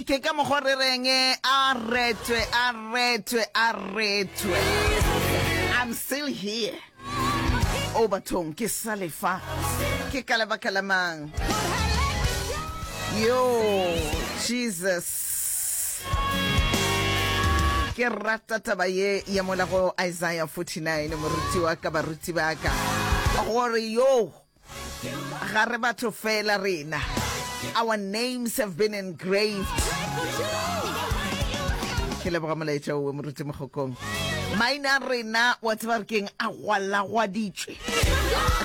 ke ka mokgwa re reng eh, a retwe a retwe a retwe i'm still here o oh, bathong ke sa lefa ke ka lebaka la mang yo jesus ke rata taba ye ya mola go isaiah 49 moruti wa ka baruti ba ka gore yo ga re batho fela rena our names have been engraved ke leboga molaetša owe moruti mogokong maina rena wa tseba re keng a gwalagwaditswe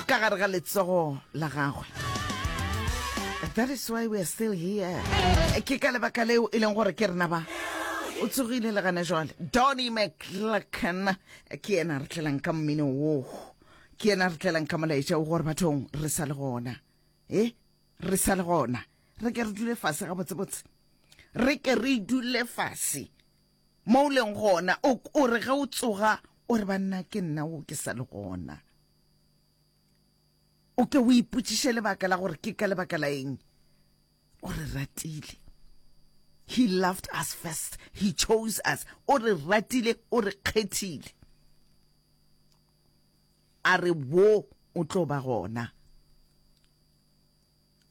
ka gare ga letsogo la gagwe that is why we are still here ke ka lebaka leo e leng gore ke rena ba o tsogile le gane jwale donny mcclacken ke yena re tlelang ka mmino woo ke yena re tlelang ka molaetša o gore bathong re sa le gona e re sa le gona re ke re dule fase ga botsebotse re ke re dule fase mo o leng gona o re ge o tsoga o re banna ke nna o ke sa le gona o ke o ipotsiše lebaka la gore ke ka lebaka la eng o re ratile he loved us first he chose us o re ratile o re kgethile a re wo o tlo ba gona,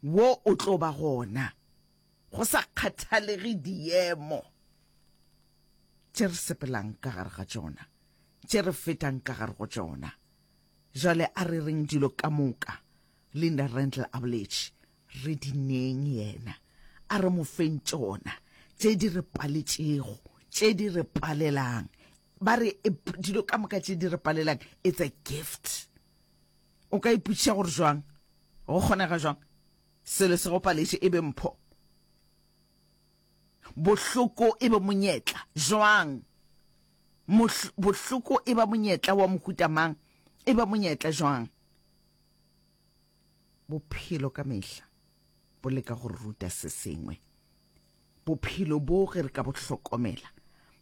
wo o tlo ba gona go sa kgathalege diemo tše re sepelang ka gare ga tšona, tše re fetang ka gare go tšona. Jwale a re reng dilo ka moka, Linda Randle a boletše, re di neng yena, a re mo feng tšona, tše di re paletšego, tše di re palelang, ba re e, dilo ka moka tše di re palelang it's a gift o ka ipotšiša gore jwang go kgonega jwang selo se go paletše e be mpho bohloko e be monyetla jwang bohloko e ba monyetla wa mohutamang e ba monyetla jwang Bophelo ka mehla bo leka go re ruta se sengwe. Bophelo bo ge re ka bo hlokomela,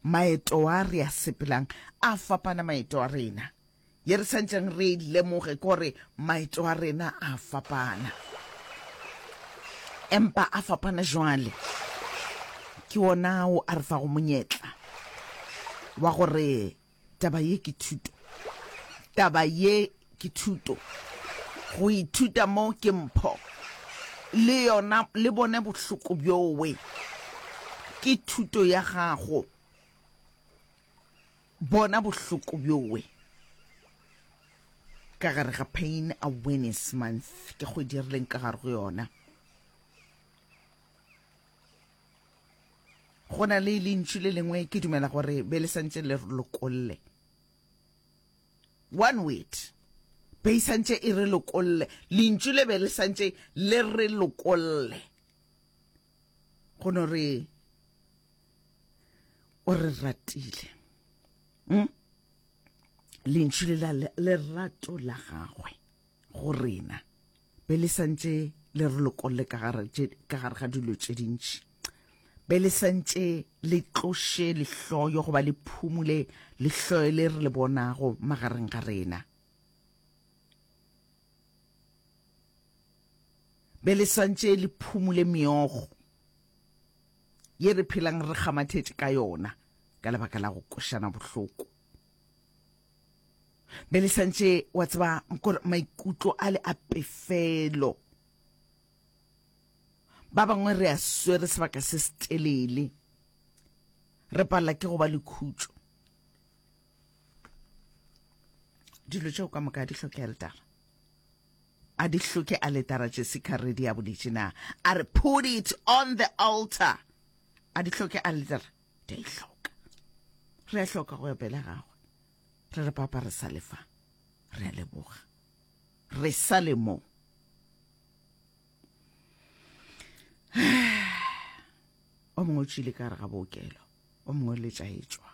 maeto a re a sepelang a fapana maeto a rena. Ye re santšeng re e lemoge ke gore maeto a rena a fapana. Empa a fapana jwale ke ona ao a re fago monyetla wa gore Taba ye ke thuto. Taba ye ke thuto. Go ithuta mo ke mpho. Le yona le bone bohloko bjowe. Ke thuto ya gago. Bona bohloko bjowe. Ka gare ga Pain Awareness Month, ke kgwedi re leng ka gare go yona. Go na le lentšu le lengwe ke dumela gore be le santše le re lokolle. One word. Be e santše e re lokolle. Lentšu le be le santše le re lokolle. Go no re o re ratile. Hmm? Lentšu le la lerato la gagwe go rena. be le santše le re lokolle ka gare ga dilo tše dintši be le santše le tloše lehloyo goba le phumule lehloyo le re le bonago magareng ga rena be le santše le phumule meogo ye re phelang re kgamathetše ka yona ka lebaka la go košana bohloko be le santše wa tseba gore maikutlo a le a pefelo ba bangwe re a swere sebaka se se telele re palela ke go ba le khutšo dilo tšeo ka moka di hloke eldara a di hloke a letara jessica redi ya boletše na a re put it on the altar a di hloke a letara di a ihloka re a hloka go ya pele gagwe re re papa re sa lefa re a leboga re sa le mo o mongwe o tšile ka re ga bookelo o mongwe le tša etswa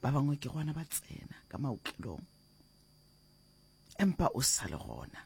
ba bangwe ke gona ba tsena ka maokelong empa o sa le gona